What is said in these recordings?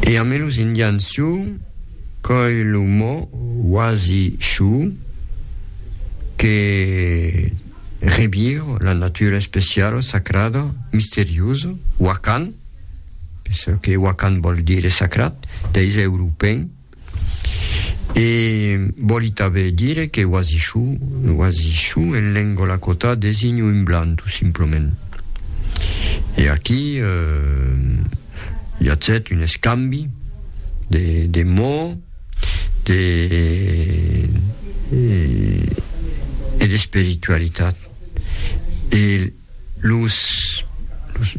E ame los indians su coi lo mò uasi shu que rebir la natura especiala, sacrada, misteriosa, wakan, que wakan vòl dire sacrat, dei ze europèn. E vòli tanben dire que oasichou, oasichou en lengo lakota designa un blanc tout simplement. E aquí i atzèt un escambi de de mots de e d'espiritualitat e Los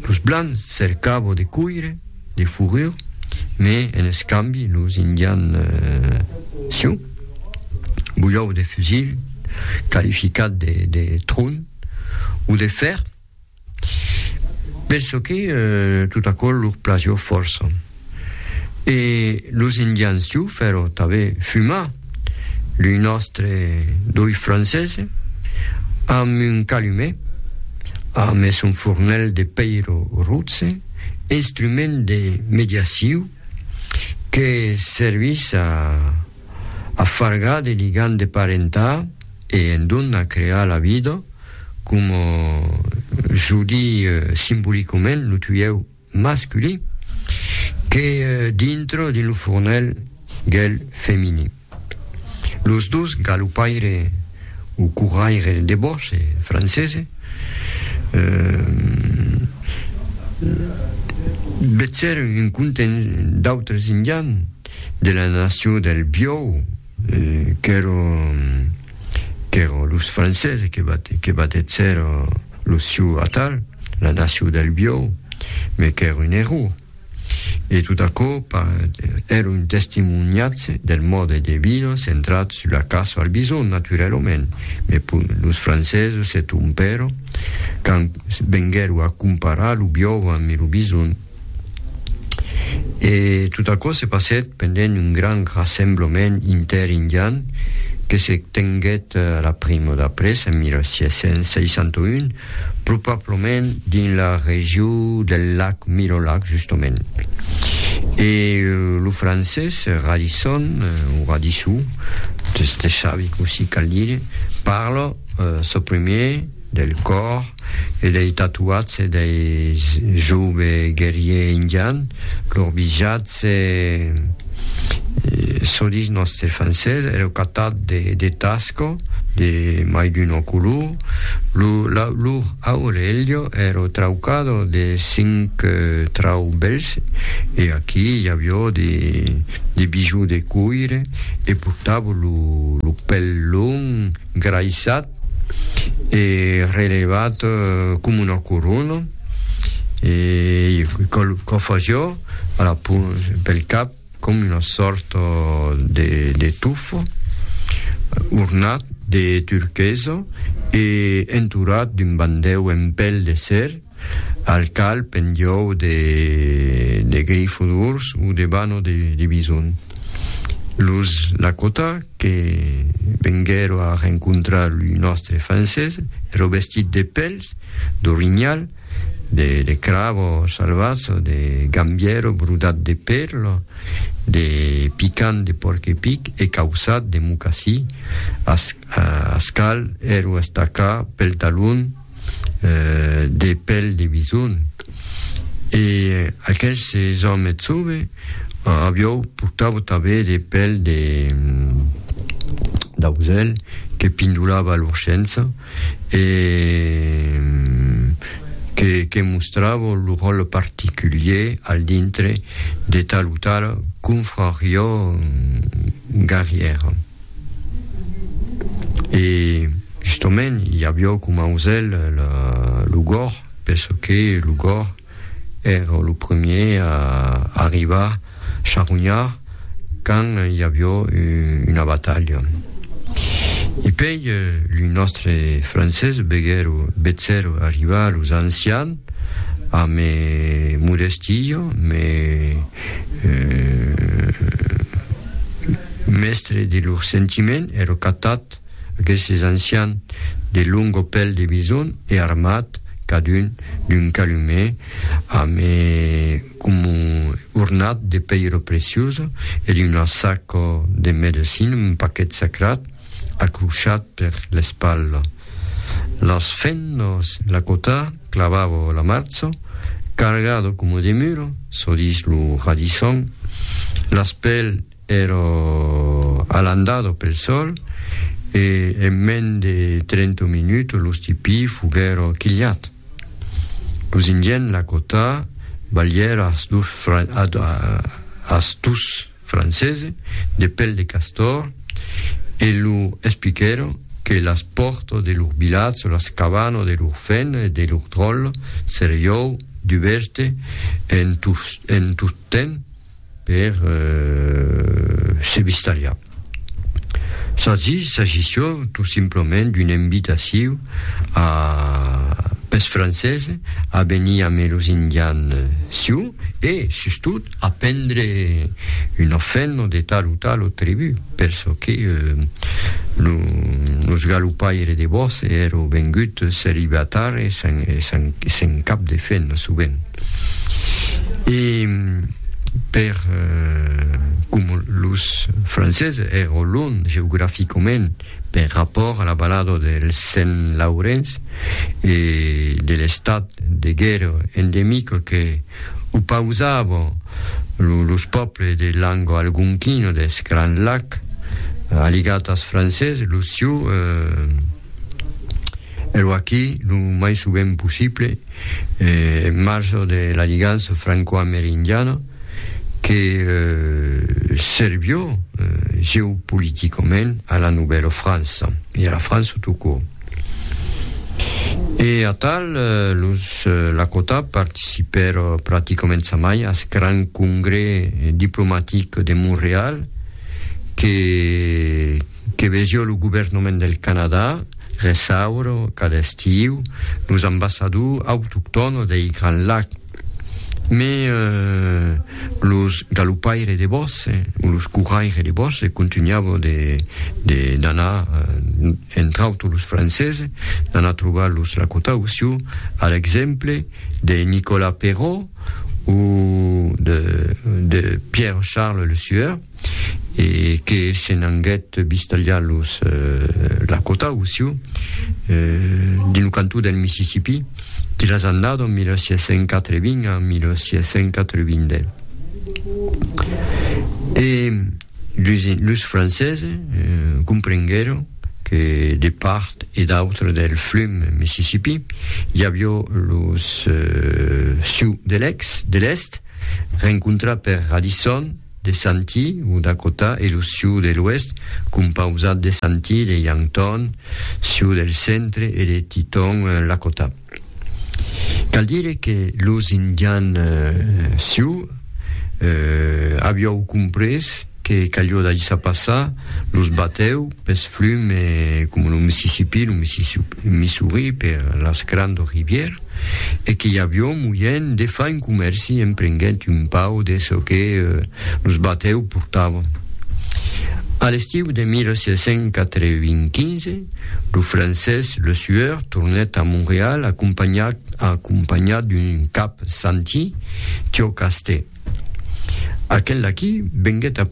los blancs cercavo de coire de fourrur me en escambi los indians siu bulhau de fusil qualificat de de tron o de fer penso que tot aquò lor plagió fòrça. E los Indians Sioux fèron tanben fumar lo nòstre dòi francés amb un calumet, amb son fornèl de pèira rotze, instrument de mediaciu que servís a afargar de ligam de parentat e endonc a crear la vida, coma jo dii simbolicament lo tuieu. masculí que dintre dins lo fornèl del femini. Los dos galopaire o corraire de bòs, en francese, vetsèron un content d'autres indians de la nacion del Biòu, Qu'èro, qu'èro los Franceses que bat, que batèt ser lo siu atal, la nacion del biòu, me qu'èro un error. E tot aquò pas, èro un testimoniatge del mòde de viure centrat sus la caça al bison, naturalament, me pur los Franceses se trompèron quand venguèro a comparar lo biòu amb lo bison. E tot aquò se passèt pendent un grand rassemblement inter-indian que se tenguèt la primo d'après en 1661, probablament dins la regio del lac Mirolac justament. E lo francés Radisson, o Radissou, de Chavic aussi cal dire, parla çò premier, del còr e dei tatuatge dei jove guerrier indian, lor bijatge solís nòste francés, ero catat de tasco de mai d'una color, lor aurelho ero traucado de cinc trau bèls e aquí i avió de bijoux de coire e portavo lo pèl long, graissat. e relevat com una corona e que faciò a la pel cap com una sòrta de, de tufo ornat de turquesa e entorat d'un bandèu en pèl de ser Al calp en diòu de grifo d'urs o de bano de bison. Los Lakota que venguèro a rencontrar lo nòstre Francés èro vestits de pèls d'orinhal, de cravo salvatz, de gambièro brodat de pèl, de picant de porc-epic e cauçat de mocassí. Ascal èro estacat pel talon. de pèl de bison, e aqueste òme eth sove aviou portava tanben de pèl de d'ausèl que pindolava a l'orchensa e que que mostrava lo ròtle particulier al dintre de tal o tala confrariá garrièra. E justament i avió coma ausèl lo gorg, penso que lo gorg èra lo premier a arribar charronhar quand i avió una batalha. E pei lo nòstre francés veguèro vetzèr arribar los ancians a me modestia, me Mèstre de lor sentiment, èrò catat, aqueses ancians de longo pèl de bison e armat, cadun d'un calumè amb e coma ornat de pèira preciosa e d'una saca de medecina, un paquet sacrat. acrochat per l'espalha. Las fennas la cotà clavava la marcha, cargada coma de mula, çò dich lo radisson. Las pel èra alandada pel sòl e en mens de trenta minuts lo stipí foguèra quilhat. Los Indiens la cotà balhèra as dus francese, de pel de castor, e lu expliquèron que las pòrtas de lur vilatge o las cabanas de lur fèna e de lur dròlla seriou dubèste en tot temps per se vistariar. S'agís, s'agissió tot simplament d'una invitaciu a pes francese a venir ame los indians siu e, sustot, A prendre un ofèlno de tal o tal o tribut, per çò que lo sgalupaire de Bosse èrò vengut celibatar e sen cap de fèlno, sovent. E per com los Frances èrò lunh geograficament per rapòrt a la balada del Sent Laurenç e de l'estat de guèrra endemic que O pausavon los pòples de lango algonquino deth Grand Lac, aligat ath francés, lo sioux e lo aqui lo mai sovent possible, en marge de la ligança francoamerindiana que servió geopoliticament a la Novèla França e a la França tout court. E atal, los Lakota participèron practicament jamai ath gran congrès diplomatic de Montreal que que vesió lo governament del Canadà reçaure cada estiu los ambassadors autoctònos dei Grands Lacs. Me los galopaires de bòsse, o los corraires de bòsse, contunhavan de, de, d'anar, entre autres los franceses, d'anar trobar los lacotaus, siu, a l'exemple de Nicolas Perrault, o de, de Pierre-Charles Le Sueur, e que se n'anguèt bistalhar los Lakota o Sioux dins lo cantó del Mississipí de las annadas 1680 a 1690. E los Franceses comprenguèron que de part e d'autra del flum Mississipí i aviá los Sioux de l'Èst rencontrar per Radisson, De Santee, o Dakota, e lo Sioux de l'Oèst, compausat de Santee, de Yankton, Sioux del Centre, e de Teton, Lakota. Cal dire que los Indians Sioux aviáu comprés que calió daissar passar los batèu pes flum e, coma lo Mississippi, lo Mississippi. Missouri per las grandes rivières e que i avión moién de far un comèrci en prenguent un pau de çò que los batèus portavan. A l'estiu de 1695, lo francés Le Sueur tornèt a Montreal acompanhat d'un cap santí, Tiocastè. Aquel aquí venguèt a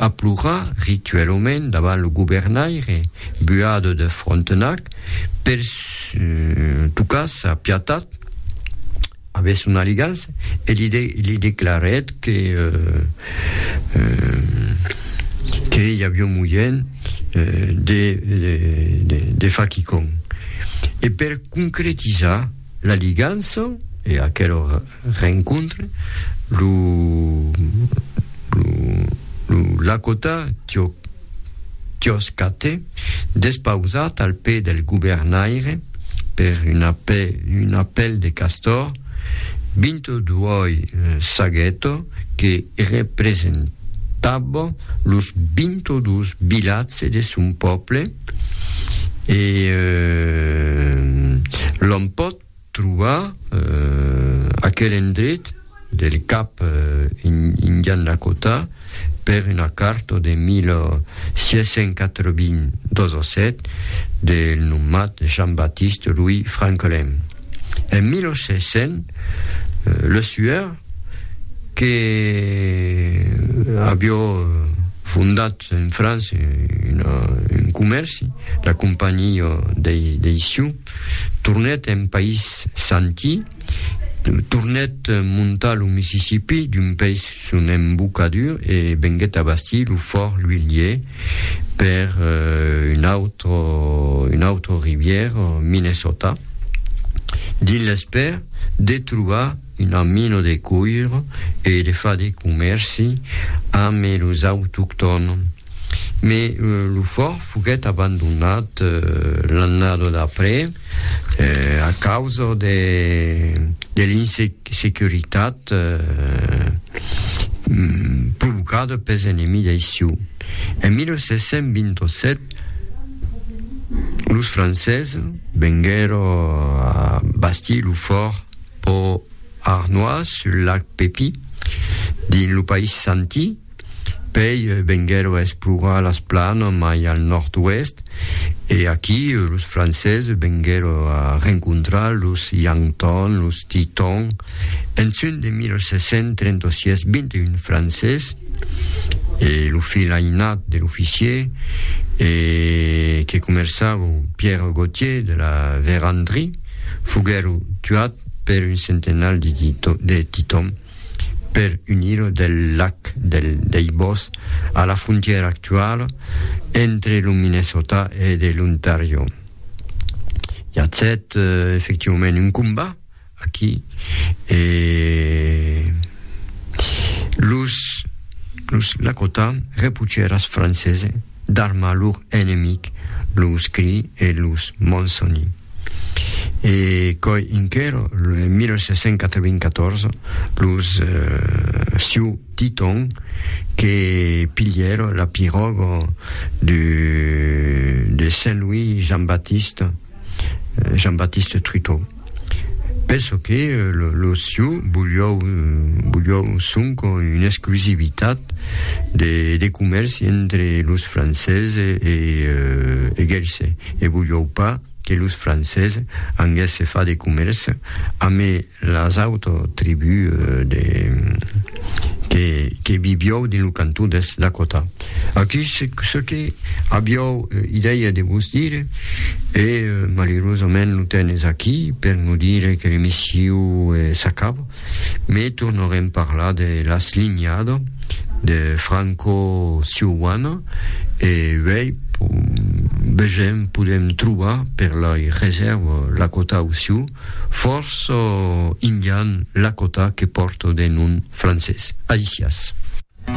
plorar rituelament davant lo governaire Buade de Frontenac per tocar sa piatat avès son aligança e li declarèt que i aviá moièn de far quicòm. E per concretizar. La ligança e aquel rencontre lo Lakota Tioskathe, despausat al pè del governaire per un apèl de castor, Bintoduoi Sageto que representava los Bintodus vilatge de son pòble, e l'òm pòt trobar aquel endret del cap Indian Lakota per una carta de 1687 del nomat Jean-Baptiste Louis Franquelin. En 1600, le Sueur, que avió fondat En França, un comèrci, la companhiá dei Sioux, tornèt en país Santí, tornèt montar lo Mississipí d'un pes son embocadur e venguèt a bastir lo Fòrt Louillier per una autra rivièra, Minnesota, dins l'espèr de trobar una mina de cuir e de far de comèrci amb los autoctòns. Mai lo fòrt foguèt abandonat l'annada d'après a causa de l'insecuritat provocada pels enemics dei Sioux. En 1727, los Franceses venguèron bastir lo fòrt. Pò Arnois, sul lac Pepi, dins lo país Santi, pei venguèro explorar las planas mai al nòrd-oèst e aquí los Franceses venguèro a rencontrar los Yankton, los Teton. En junh de 1736, 21 Franceses e lo filh ainat de l'oficier e que comerçava Pierre Gautier de la Vérendrye, Foguèro tuat per un centenal de Titòm per unir-o del lac del Deibòs a la frontièra actuala entre lo Minnesota e de l'Ontàrio. I a set efectivament un combat aquí e los los Lakota repuchèras francese d'armar lor enemic, los Cree e los Monsoni. E coi inquero, en 1794, los Sioux Teton que pilhèro la piròga de Saint Louis Jean-Baptiste, Jean-Baptiste Truteau. Penso que los Sioux volion sonque una exclusivitat de comèrci entre los Franceses e Gelse. Ne vujòu pas que los Francés anguèsse far de comèrç ame las autres tribus de que que viviòu dins lo cantó d'Est Dakota. Aquí se ce que aviòu idèia de vos dire e malerosament lo temps es aquí per nos dire que l'emissiu s'acaba. Me tornarem parlar de l'aslinhada de Franco Siuana e uèi vegem podem trobar per lai resèrva Lakota o Sioux, fòrça indian Lakota que pòrta de nom francés. Alicias.